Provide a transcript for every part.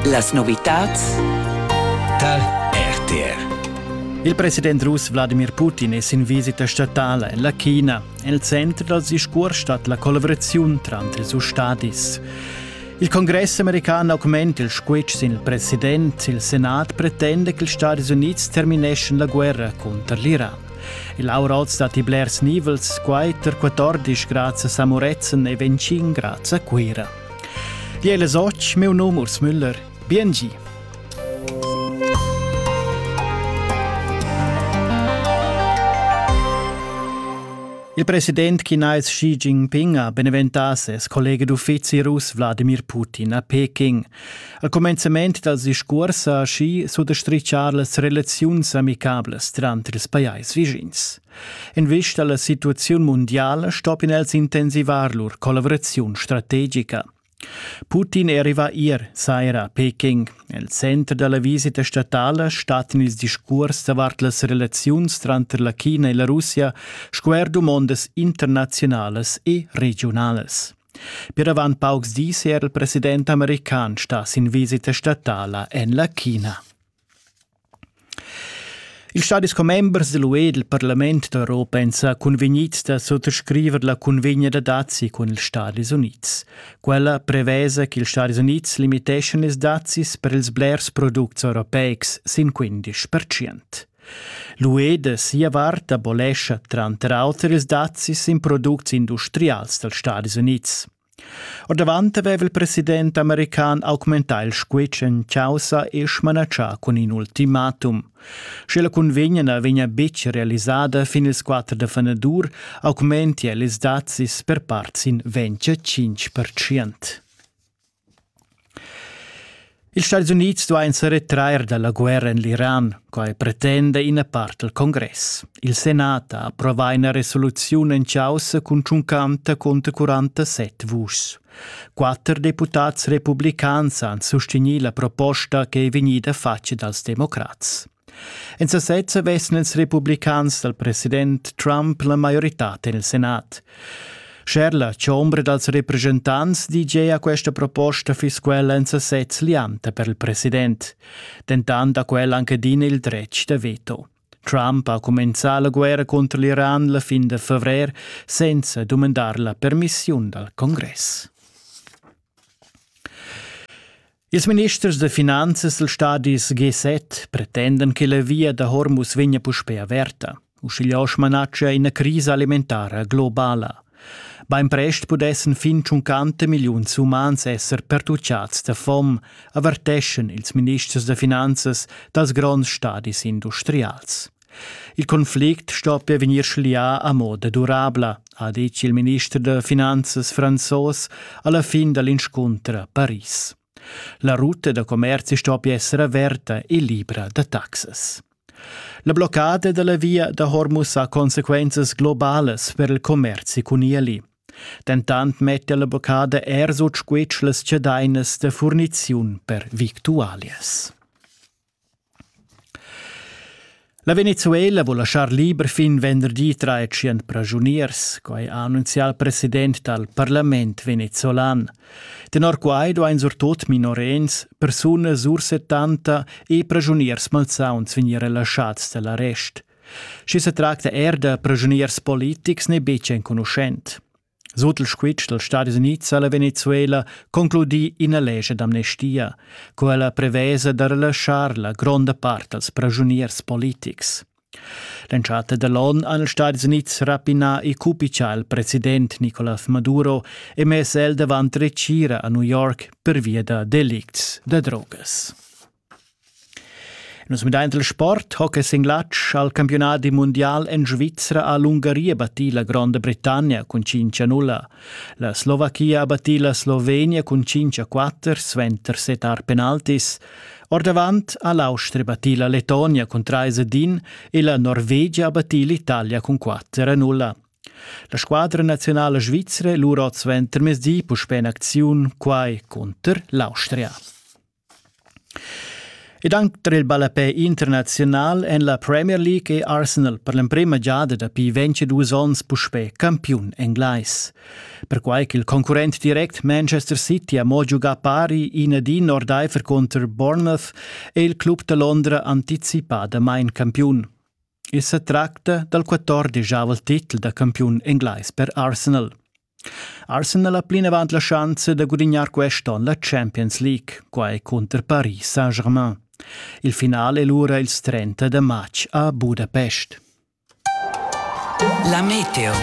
Las novitads tar RTR. Il president russ Wladimir Putin è sin visita statala en la China. El center dal discurs stat la collaboraziun tranter ils stadis. Il congress american augment il squitsch sin il president. Il senat pretenda che ils Stati Unids termineschan la guerra cunter l'Iran. Il auralt stat i blers nivels, quai tar 14 grazie a Samorezen e 25 grazie a Cuira. Di è les och, meu nom Urs Müller. Biengi. Il president chinais Xi Jinping ha beneventà ses collega d'uffizi russ Wladimir Putin a Peking. Al cumenzament dals discurs ha Xi suttostrichà las relaziuns amicablas tranter ils pajais vischins. En vista alla situaziun mundiala stoppien els intensivar lur collaveraziun strategica. Putin arriva ier saira a Peking. El center dalla visita statala stattan ils discuors davart las relaziuns tranter la China e la Russia sco er dumondas internazionalas e regionalas. Per avant paucs dis è er il president american sta sin visita statala en la China. Ils stadis commembers dell'UE e del Parlament d'Europa èn sa cunvegnids da suttascriver la cunvegna da dazi cun ils Stadis Unids. Quella prevesa ch'ils Stadis Unids limiteschan ils dazis per ils blers products europeics sin 15 percent. L'UE da sia vart abolescha tranter auter ils dazis in products industrials dals Stadis Unids. Ordavant aveva il president american augmentà il squitsch en chaussa e smanatschà cun in ultimatum. Sche la cunvegna na vegnia betg realisada fin ils 4 da fenadur, augmentia ils dazis per part sin 25%. Ils Stats Unids duain sa retrair da la guerra en l'Iran, quai pretenda ina part dal congress. Il Senat ha approvà ina resoluziun en chaussa contschuncanta cunter 47 vuschs. Quatter deputads republicans han sustegnì la proposta che è vegnida fatga dals democrats. En sasezza vessen ils republicans dal president Trump la maioritad en il Senat. Scherla, chombra dals representants, dice a questa proposta fiss quella en sasez lianta per il president. Dentant ha quella anche adina il dretg da veto. Trump ha comincià la guerra contro l'Iran la fin de fevrere senza domandar la permissiun dal congress. Ils ministers da finanzas dals stadis G7 pretendan che la via da Hormuz vegnia puspè averta, uschiglià smanatscha ina crisa alimentara globala. Bainprest pudessan fin tschuncanta milliuns umans esser pertuchads da fom, averteschan ils ministers da finanzas dals gronds stadis industrials. Il conflict stoppia vegnir schlià a moda durabla, ha detg il minister da finanzas franzos a la fin da l'inscunter a Paris. La ruta da commerzi stoppia essere averta e libra da taxas. La bloccada da la via da Hormuz ha consequenzas globalas per il commerzi cun ieli. Dentant metta la bloccada er sut squitsch las chadainas da furniziun per victualias. La Venezuela vul laschar liber fin venderdi tratschient praschuniers, quai ha annunzià il president dal parlament venezolan. Tenor quai duain surtut minorenns, persunas sur 70 e praschuniers malsauns vegnir relaschads da l'arrest. Schi se tracta er da praschuniers politics n'è betg enconuschent. Sut il squitsch dals Stadis Unids ha la Venezuela concludì ina lescha d'amnestia. Quella prevesa da relaschar la gronda part als praschuniers politics. L'entschatta dall'onn han ils Stadis Unids rapinà e cupichà il president Nicolás Maduro e mess el davant retgira a New York pervia da delicts da drogas. Nus midaint il sport, hockey sin glatsch, al campiunadi mundial en Svizra ha l'Ungaria battì la Gronda Britannia cun 5 a 0. La Slovachia ha battì la Slovenia cun 5 a 4, suenter set art penaltis. Ordavant ha l'Austria battì la Letonia cun 3 a 1 e la Norvegia ha battì l'Italia cun 4 a 0. La squadra nazionala svizra lura oz ventermezdi puspè en acziun, quai cunter l'Austria. Ed anc tar il ballapè internaziunal en la Premier League è Arsenal per l'emprima giada dapi 22 onns puspè campiun englais. Perquai ch'il concurrent direct Manchester City ha mo giugà pari in adin ordaifer cunter Bournemouth è il club da Londra anticipadamain campiun. I sa tracta dal 14 avel titel da campiun englais per Arsenal. Arsenal ha plinavant la schanza da gudignar quest onn la Champions League, quai cunter Paris Saint-Germain. Il final è lura ils 30 da matg a Budapest. La Meteo.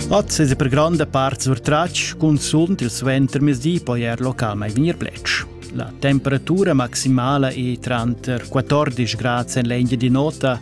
Oz è per gronda part surtratg, cunzunt il suentermezdi poi er local mai vegnir plec. La temperatura maximala è tranter 14 grad en l'engia di nota